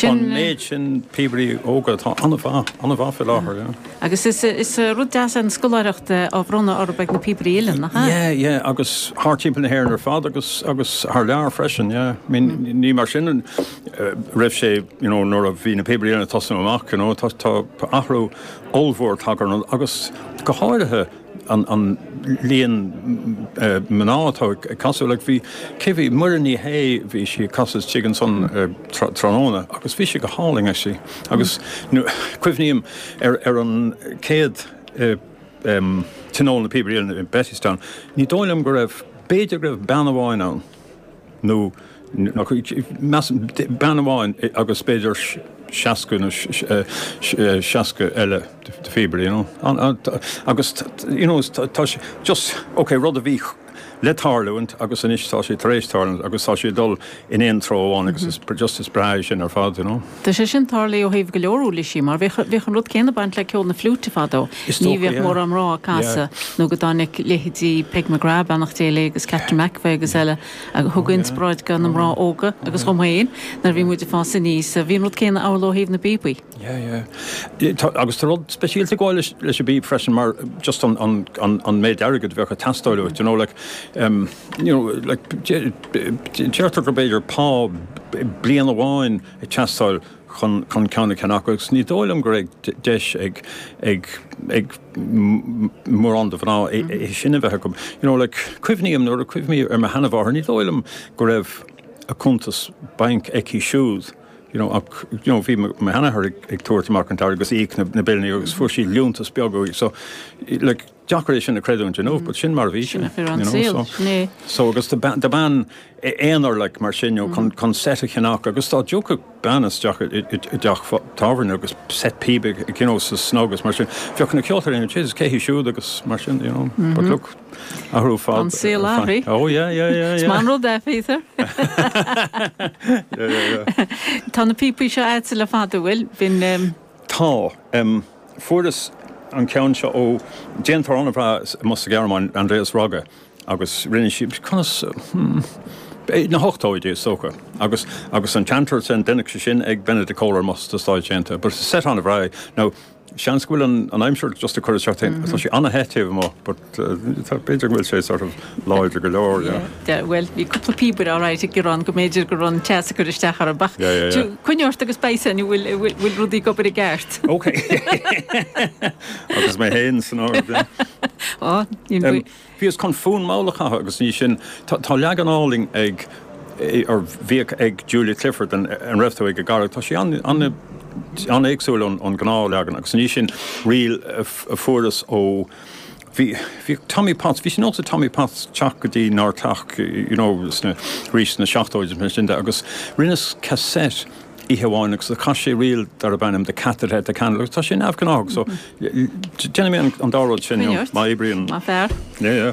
An méid sin píobairí óga atá an-mhaith, an-mhaith fé láthair, yeah. Agus is, is rud deas é an scoláireacht á bhronnadh orthu ag Na Píobairí Uilleann, nach ea? Yeah, yeah, agus thar timpeall na hÉireann ar fad agus, agus thar lear freisin, yeah. I mean, ní mar sin a raibh sé, you know, nuair a bhí Na Píobairí Uilleann ag tosnú amach, you know, tá, tá athrú ollmhór tagtha ar an, agus go háirithe, an líon mná atá ag casadh like bhí cé bhí Muireann Ní Shé bhí sí ag casadh istigh ansan tráthnóna agus bhí sé go hálainn ag éisteacht agus cuimhním ar ar an céad tionól Na Píobairí Uilleann i Bettystown ní dóigh liom go raibh b'fhéidir go raibh bean amháin ann. nó ach bean amháin agus b'fhéidir seasca nó seasca eile de phíobairí you know agus you know tá sé just ok rud a bhí le tarlúint agus anois tá sé tar éis tarlúint agus tá sé dul in aon treo amháin agus is just is breá é sin ar fad you know. Tá sé sin tarlaithe ó thaobh go leor úirlisí mar bheadh an rud céanna baint le ceol na fliúite fadó. Is Ní dócha, bhíodh yeah. mórán mná ag casadh Yeah. nó go dtáinic leithéidí Peg McGrath, beannacht Dé léi agus Catherine McEvoy agus eile agus thug Oh yeah. inspioráid do na mná Oh óga agus dhom yeah. féin nuair a bhí Yeah. muid ag fás aníos. Bhí an rud céanna amhlaidh ó thaobh na bpíobaí. Yeah, yeah. Yeah, tá- Agus tá rud speisialta ag gabháil leis, leis an bpíb freisin mar just an, an, an, an méid airgid bheadh a teastáil uait, you know, like, um, Deirtear go mb'fhéidir pá bliain amháin a teastáil chun ceann a cheannach agus ní dóigh liom go raibh deis ag mórán de mhná é sin a bheith acu. Cuimhním, nuair a chuimhním ar mo sheanmháthair, ní dóigh liom go raibh cuntas bainc aici siúd ach bhí mo sheanathair ag tabhairt amach an t-airgead agus ag íoc na billíní agus fuair sí liúntas beag uaidh. deacair é sin a creidiúint you know, but sin mar a bhí sé. you know, so agus do bean aonair like, mar sin you know, chun set a cheannach agus dá dtiocfadh bean isteach i dteach tábhairne agus set píbe you know, sa snug agus mar sin bheadh na ceoltóirí is cé hí siúd agus mar sin you know, but look athrú ar fad an saol athraithe oh yeah yeah yeah Tá an rud é féidir Tá na píobaí seo agat le fada an bhfuil bhín Tá. Fuaireas an ceann seo ó déantóir an-bhreá amuigh sa Ghearmáin, Andreas Rogge, agus rinne sé, conas, hmm, na hochtóidí is dócha. Agus agus an seamsúr sin, deineadh sé sin ag Benedict Koehler amuigh sna Stáit Aontaithe. But set an-bhreá é. Now, seans go bhfuil an aimsir just ag cur isteach, tá sé an-the taobh amuigh but. B'fhéidir go bhfuil sé sort of láidir go leor, yeah. Bhuel, bhí cúpla píobaire alright ag Ciarán go mb'fhéidir go raibh an teas ag cur isteach orthu ach tú, coinnigh ort agus beidh san, bhfuil rudaí ag obair i gceart. Ok. Agus mé féin san áireamh, yeah. Á, níl mé. Bhíos chun fonn mall a chasadh agus i ndiaidh sin, tá leagan álainn ag, or bhíodh ag Julia Clifford An Raibh Tú ag an gCarraig, tá sé an-éagsúil ón gnáthleagan agus i ndiaidh sin, ríl a fuaireas ó, Bhí, bhíodh Tommy Potts, bhí sé de nós ag Tommy Potts teacht go dtí ár dteach, you know, sna, arís sna seachtóidí is mar sin de agus rinneas cassette oíche amháin agus do chas sé ríl darb ainm The Cat That Ate The Candle agus tá sé neamhghnáthach so déanfaidh mé an dá rud sin, you know, má oibríonn. Maith fear. Yeah, yeah.